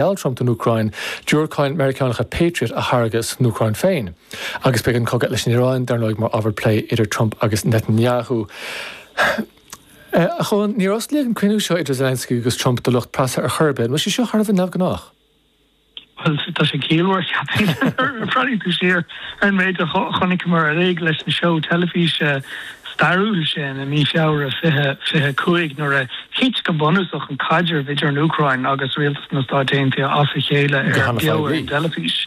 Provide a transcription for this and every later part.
Gheall Trump don Úcráin diúracáin Mheiriceánacha Patriot a tháirgeadh san Úcráin féin. Agus beidh an cogadh leis an Iaráin dar ndóigh mar ábhar plé idir Trump agus Netanyahu. A Chóilin, níor osclaíodh an cruinniú seo idir Zelensky agus Trump do lucht preasa ar chor ar bith, an bhfuil sé seo thar a bheith neamhghnách? Bhuel, tá sé ciallmhar cheapfainn. Má bhreathnaíonn tú siar ar an méid a chonaiceamar ag éirí leis an seó teilifíse stairiúil sin i mí Feabhra 2025 nuair a thit go bunúsach an caidreamh idir an Úcráin agus Rialtas na Stáit Aontaithe as a chéile ar beo ar an dteilifís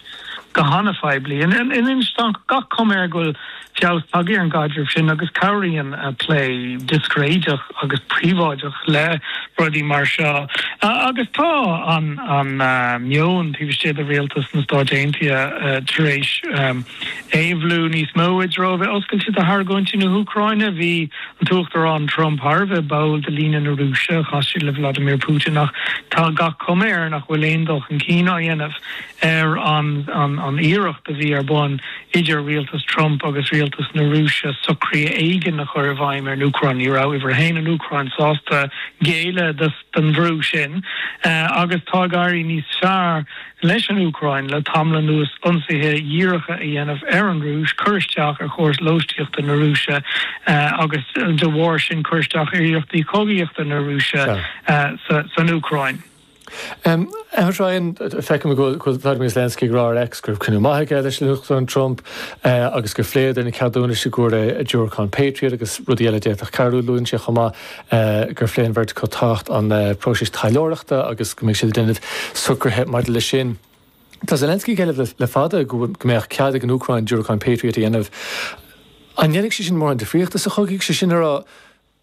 go han-phoiblí. Anois tá an-chuma air go bhfuil feabhas tagtha ar an gcaidreamh sin agus cabhraíonn plé discréideach agus príobháideach le rudaí mar seo. Agus tá an meon taobh istigh de Rialtas na Stáit Aontaithe tar éis. Éabhlú níos mó i dtreo a bheith oscailte do argóintí na hÚcráine. Bhí an tUachtarán Trump thar a bheith báúil do líne na Rúise. Chas sé le Vladimir Putin ach tá gach cuma air nach bhfuil aon dul chun cinn á dhéanamh ar an iarracht a bhí ar bun idir rialtas Trump agus rialtas na Rúise socrú éigin a chur i bhfeidhm ar an Úcráin. Ní raibh Uimhir a hAon an Úcráin sásta géilleadh don bhrú sin agus tá ag éirí níos fearr leis an Úcráin le tamall anuas ionsaithe díreacha a dhéanamh ar an Rúis, cur isteach ar chóras lóistíochta na Rúise agus de bharr sin cur isteach ar iarrachtaí cogaíochta na Rúise san Úcráin. A Ryan, feicim go bhfuil Volodymyr Zelensky ag rá ar X go raibh cruinniú maith aige leis an Uachtarán Trump agus gur phléadar na ceadúnais i gcomhair diúracán Patriot agus rudaí eile a d'fhéadfadh cabhrú. Luann sé chomh maith gur phlé an bheirt acu tábhacht an phróisis taidhleoireachta agus go mbeidh siad ag déanamh socruithe maidir leis sin. Tá Zelensky ag éileamh le fada go mbeadh cead ag an Úcráin diúracáin Patriot a dhéanamh. An ndéanfaidh sé sin mórán difríochta sa chogadh? Sé sin le rá,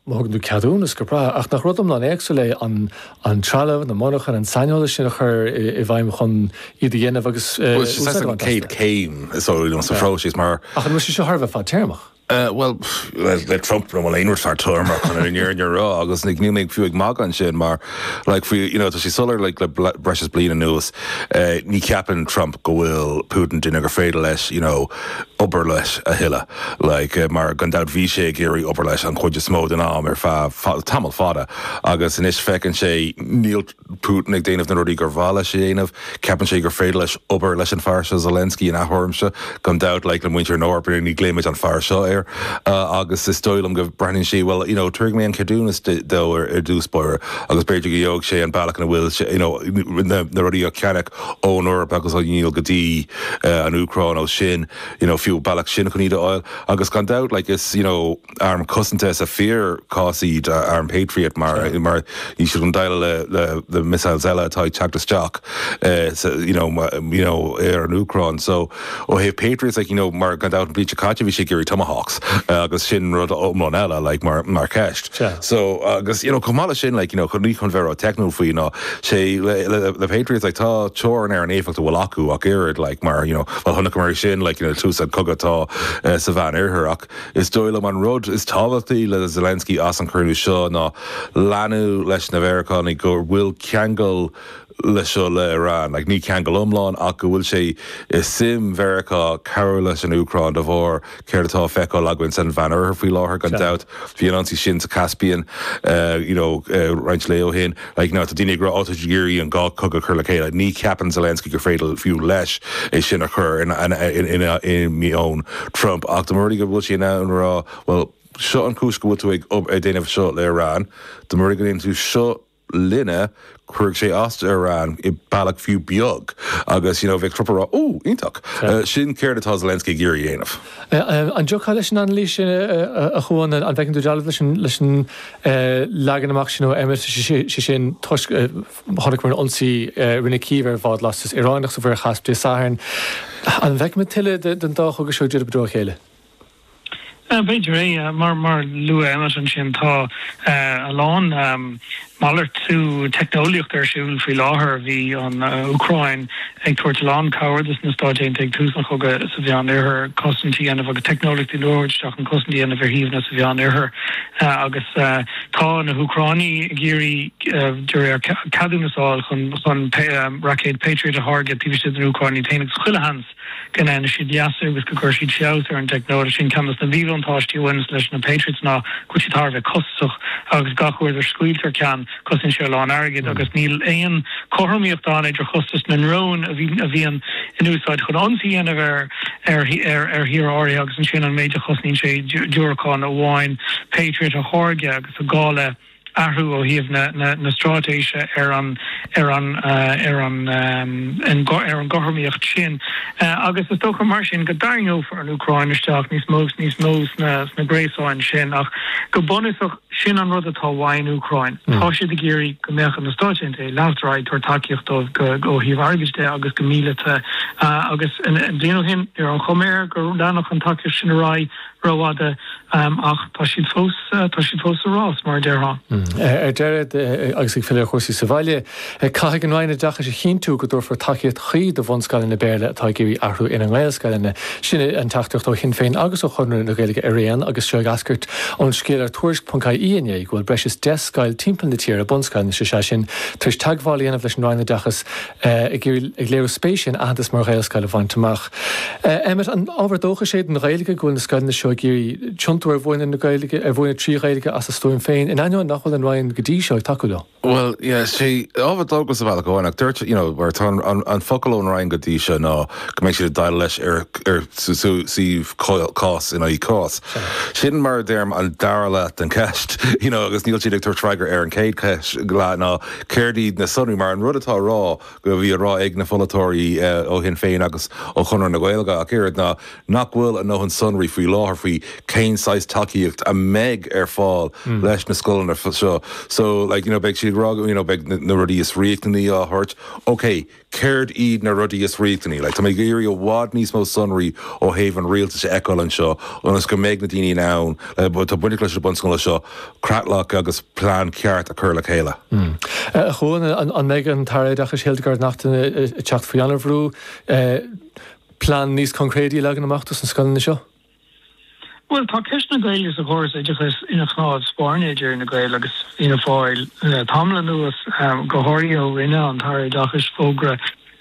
má thugann tú ceadúnas, go breá, ach nach rud iomlán éagsúil é an trealamh, na monarchana, an saineolas sin a chur i bhfeidhm chun iad a dhéanamh agus úsáid a bhaint astu? Bhuel, sin an chéad chéim, is dóigh liom, sa phróiseas mar. Ach an bhfuil sé seo thar a bheith fadtéarmach? Bhuel, le Trump níl aon rud fadtéarmach chun an fhírinne a rá agus níl mé fiú ag magadh ansin mar like faoi you know tá sé soiléir like le bl- breis is bliain anuas eh, ní cheapann Trump go bhfuil Putin duine gur féidir leis you know obair leis a thuilleadh like eh, mar gan dabht bhí sé ag iarraidh obair leis an chuid is mó den am ar feadh fa- tamall fada agus anois feiceann sé níl Putin ag déanamh na rudaí gur mhaith leis a dhéanamh. Ceapann sé gur féidir leis obair leis an fear seo, Zelensky, ina thuairimse. Gan dabht, like, le muintir na hEorpa, ní ghlaoimid an fear seo air. Agus is dóigh liom go breathnaíonn sé, bhuel, you know, tabharfaidh mé an ceadúnas dó ar dtús báire agus b'fhéidir go gheobhaidh sé an bealach ina bhfuil sé, you know, na rudaí a cheannach ón Eoraip agus a dhíol go dtí an Úcráin ó sin, you know, fiú, bealach sin chun iad a fháil. Agus gan dabht, like, is, you know. arm cosanta sa fíor-chás iad, arm Patriot, mar tá siad chun deighleáil leis na missiles eile atá ag teacht isteach you know you know ar an Úcráin. So ó thaobh Patriots, like you know mar gan dabht an bhliain seo caite bhí sé ag iarraidh Tomahawks agus sin rud iomlán eile like mar cheist. So agus you know chomh maith leis sin like you know ní chun bheith ró teicniúil faoi ná aon sé le le le Patriots like tá teorainn ar an éifeacht a bhfuil acu ach oiread like mar you know bhuel chonaiceamar é sin like you know le tús an cogadh atá sa Mheán Oirthear ach Is dóigh liom an rud is tábhachtaí le Zelensky as an cruinniú seo ná léiriú leis na Mheiriceánaigh go bhfuil ceangal le seo le Iran, like ní ceangal iomlán ach go bhfuil sé i suim Mheiriceá cabhrú leis an Úcráin de bharr céard atá a feiceáil againn san Mheán Oirthear faoi láthair gan dabht. Bhí an ionsaí sin sa Caspian, you know, roinnt lae ó shin. Like now, tá daoine ag rá, oh, tá siad ag iarraidh an dhá cogadh a chur le chéile. Ní cheapann Zelensky gur féidir fiú leis é sin a chur i meon Trump. Ach dá mba rud é go bhfuil sé in ann a rá, well, seo an chúis go bhfuil tú ag déanamh seo le Iran, dá mba rud é go ndéanann tú seo linne, cuirfidh sé as do Iran i bealach fiú beag. Agus, you know, bheadh Trump ag rá, oh, iontach, sin céard atá Zelensky ag iarraidh a dhéanamh. An dtiocfá leis an anailís sin a Chuain? An bhfeiceann tú dealramh leis an leagan amach sin ó Emmet, sé sin toisc chonaiceamar an ionsaí a rinne Cív ar bhád lastas Iaráineach sa Mhuir Chaisp Dé Sathairn? An bhfeicimid tuilleadh den dá chogadh seo ag díriú i dtreo a chéile? B'fhéidir é. Mar a luaigh Emmet ansin, tá a lán malartú teicneolaíochta ar siúl faoi láthair. Bhí an Úcráin ag tabhairt a lán cabhair do na Stáit Aontaithe ag tús an chogaidh sa Mheánoirthear, cosaint a dhéanamh agus teicneolaíochtaí nua a thabhairt isteach chun cosaint a dhéanamh ar shuíomhanna sa Mheánoirthear agus tá na hÚcránaigh ag iarraidh de réir ceadúnas a fháil chun raicéid Patriot a tháirgeadh taobh istigh den Úcráin iad féin agus chuile sheans go ndéanfaidh siad leasú agus go gcuirfidh siad feabhas ar an dteicneolaíocht sin. Ceann de na míbhuntáistí a bhaineas leis na Patriots ná go bhfuil siad thar a bheith costasach agus gach uair a scaoiltear ceann, cosnaíonn sé a lán airgid agus níl aon chothromaíocht ann idir chostas na ndrón a bhíonn in úsáid chun ionsaí a dhéanamh ar thír áirithe agus ansin an méid a chosnaíonn sé diúracán amháin Patriot a tháirgeadh agus an gá le athrú ó thaobh na straitéise ar an ar an ar an ar an gcothromaíocht sin agus is dócha mar sin go dtarraingeofar an Úcráin isteach níos mó is níos mó sna gréasáin sin ach go bunúsach sin an rud atá uaidh an Úcráin. Tá siad ag iarraidh go mbeadh na Stáit Aontaithe ag leanacht ar aghaidh ag tabhairt tacaíocht dóibh ó thaobh airgid de agus go míleata agus bliain ó shin ní raibh an chuma air go leanfadh an tacaíocht sin ar aghaidh rófhada ach tá siad fós tá siad fós sa rás, mar a déarfá. Ar deireadh, agus ag filleadh ar chúrsaí sa bhaile, caithfidh an Roinn Oideachais a chinntiú go dtabharfar tacaíocht chuí do bhunscoileanna Béarla atá ag iarraidh athrú ina nGaelscoileanna. Sin an teachtaireacht ó Shinn Féin agus ó Chonradh na Gaeilge araon agus seo ag eascairt ón scéal ar Tuairisc.ie inné go bhfuil breis is deich scoil timpeall na tíre, bunscoileanna is ea sin, tar éis teagmháil a dhéanamh leis an Roinn Oideachais ag iarraidh ag léiriú spéise in aitheantas mar Ghaelscoil a bhaint amach. Emmet, An ábhar dóchais é don Ghaeilge go bhfuil na scoileanna seo ag iarraidh tiontú ar mhúineadh na Gaeilge, ar mhúineadh trí Ghaeilge as a stuaim féin, in ainneoin nach bhfuil an Roinn go dtí seo ag tacú leo? Bhuel, yeah, tá sé ábhar dóchais sa bhealach amháin ach,, you know, mar tá an focal ón Roinn go dtí seo ná go mbeidh siad ag déileáil leis ar ar suíomh cás in aghaidh cás. Sin mar a deirim an dara leath den cheist, you know, agus níl siad ag tabhairt freagra ar an chéad cheist, leath ná Céard iad na sonraí? Mar an rud atá a rá go bhí a rá ag na pholaiteoirí ó Shinn Féin agus ó Chonradh na Gaeilge ach oiread ná nach bhfuil a ndóthain sonraí faoi láthair faoi cén saghas tacaíocht a mbeidh ar fáil leis na scoileanna seo. So, like, you know, beidh siad ag rá, you know, beidh na rudaí is riachtanaí á thabhairt. Okay. céard iad na rudaí is riachtanaí. Like tá mé ag iarraidh i bhfad níos mó sonraí ó thaobh an rialtais a fheiceáil anseo ionas go mbeidh na daoine in ann, like tá baint leis na bunscoileanna seo, creatlach agus plean ceart a chur le chéile. A Chuain, an mbeidh an tAire Oideachais Hildegarde Naughton ag teacht faoi an-bhrú plean níos coincréidí a leagan amach do sna scoileanna seo? Bhuel, tá ceist na Gaeilge sa chóras oideachais ina chnámh spairne idir Fhine Gael agus Fianna Fáil le tamall anuas, go háirithe ó rinne an tAire Oideachais fógra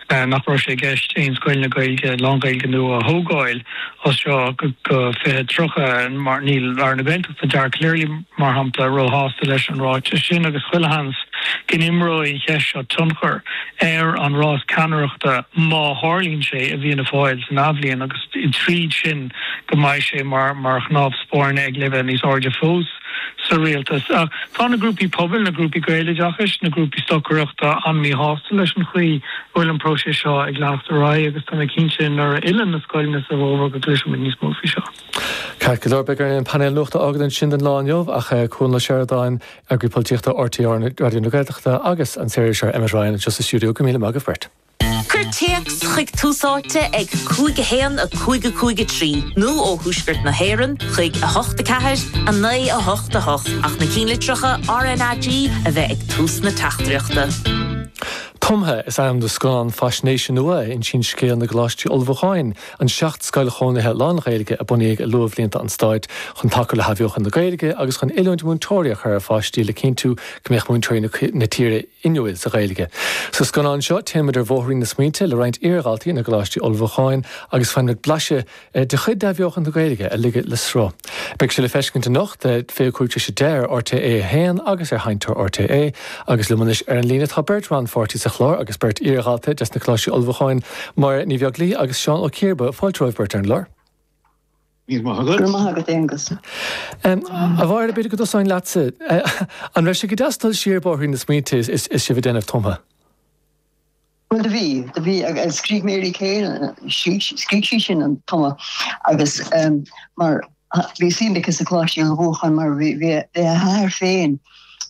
nach raibh sé i gceist aon scoileanna Gaeilge, lán-Ghaeilge nua a thógáil as seo go 2030. Níl Aire na Gaeltachta, Dara Calleary, mar shampla, róshásta leis an ráiteas sin agus chuile sheans go n-imreoidh an cheist seo tionchar ar an rás ceannaireachta má tharlaíonn sé i bhFianna Fáil san athbhliain agus tríd sin go mbeidh sé mar chnámh spairne ag leibhéal níos airde fós sa rialtas. Tá na grúpaí pobail, na grúpaí Gaeloideachais, na grúpaí stocaireachta an-míshásta leis an chaoi a bhfuil an próiseas seo ag leanacht ar aghaidh agus tá mé cinnte nuair a fhilleann na scoileanna sa bhfómhar go gcloisfimid níos mó faoi seo. Ceart go leor, beidh orainn an painéal nuachta a fhágaint ansin don lá inniu ach Cuan Ó Seireadáin, Eagraí Polaitíochta RTÉ Raidió na Gaeltachta agus an saoririseoir Emmet Ryan anseo sa stiúideo, go míle maith agaibh beirt. Cuir téacs chuig Tús Áite ag 5 1 5 5 3 nó ó Thuaisceart na hÉireann chuig 8 4 9 8 8 ach na cinnlitreacha RNAG a bheith ag tús na teachtaireachta. Tumtha is ainm do scannán faisnéise nua a insíonn scéal na gcoláistí ullmhúcháin An 7 scoil chónaithe lán-Ghaeilge a bunaíodh i luathbhlianta an Stáit chun tacú le hathbheochan na Gaeilge agus chun oiliúint múinteoirí a chur ar pháistí le cinntiú go mbeadh múinteoirí na tíre inniúil sa Ghaeilge. Sa scannán seo téann muid ar bhóithrín na smaointe le roinnt iardhaltaí na gColáistí Ullmhúcháin agus faigheann muid blaiseadh de chuid d'athbheochan na Gaeilge a ligeadh le sruth. Beidh sé le feiscint anocht ag 25 tar éis a deich ar RTÉ 1 agus ar Sheinnteoir RTÉ agus liom anois ar an líne tá beirt rannpháirtí sa chlár agus beirt iar-dhalta des na Coláistí Ullmhúcháin, Máire Ní Bheaglaoich agus Seán Ó Ciarba. Fáilte romhaibh beirt ar an gclár. Míle maith agat. Go raibh maith agat Aonghus. A Mháire, b'fhéidir go dtosóinn leatsa. An raibh sé go deas dul siar bóithrín na smaointe is sibh ag déanamh Tumtha? Bhuel, do bhí, do bhí agus scríobh Mary Keane, scríobh sí sin an Tumtha agus mar bhí suim aici sa Choláiste Ullmhúcháin mar bhí a hathair féin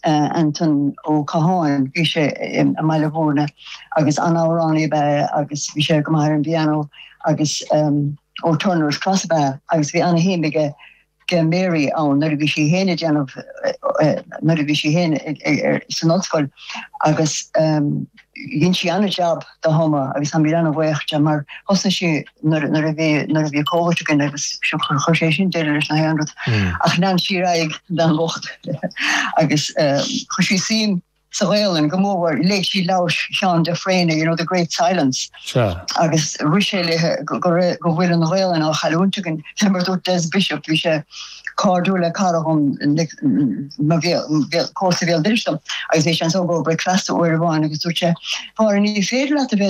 Anton Ó Catháin, bhí sé i mBaile Bhúirne agus an-amhránaí ab ea é agus bhí sé go maith ar an bpianó agus ó Turner's Cross ab ea é agus bhí ana-shuim aige ag Mary ann nuair a bhí sí féin ag déanamh, nuair a bhí sí féin san ollscoil agus dhein sí an-jab de Thumtha agus táimid an-bhaoch di mar thosnaigh sí nuair nuair a bhí nuair a bhí Covid againn agus chuir sé sin deireadh leis na haon rud ach lean sí ar aghaidh an bhean bhocht agus chuir sí suim sa Ghaelainn go mór, léigh sí leabhar Sheáin de Fréine, you know, The Great Silence, agus rith sé léi go raibh, go bhfuil an Ghaelainn á chailliúint againn, fé mar a dúirt Des Bishop, bhí sé cairdiúil le cara dhom comharsa bhéal dorais dom, agus bhí sé anso i gcomhair bricfeasta uair amháin agus dúirt sé, Phádraig, ní féidir leat a bheith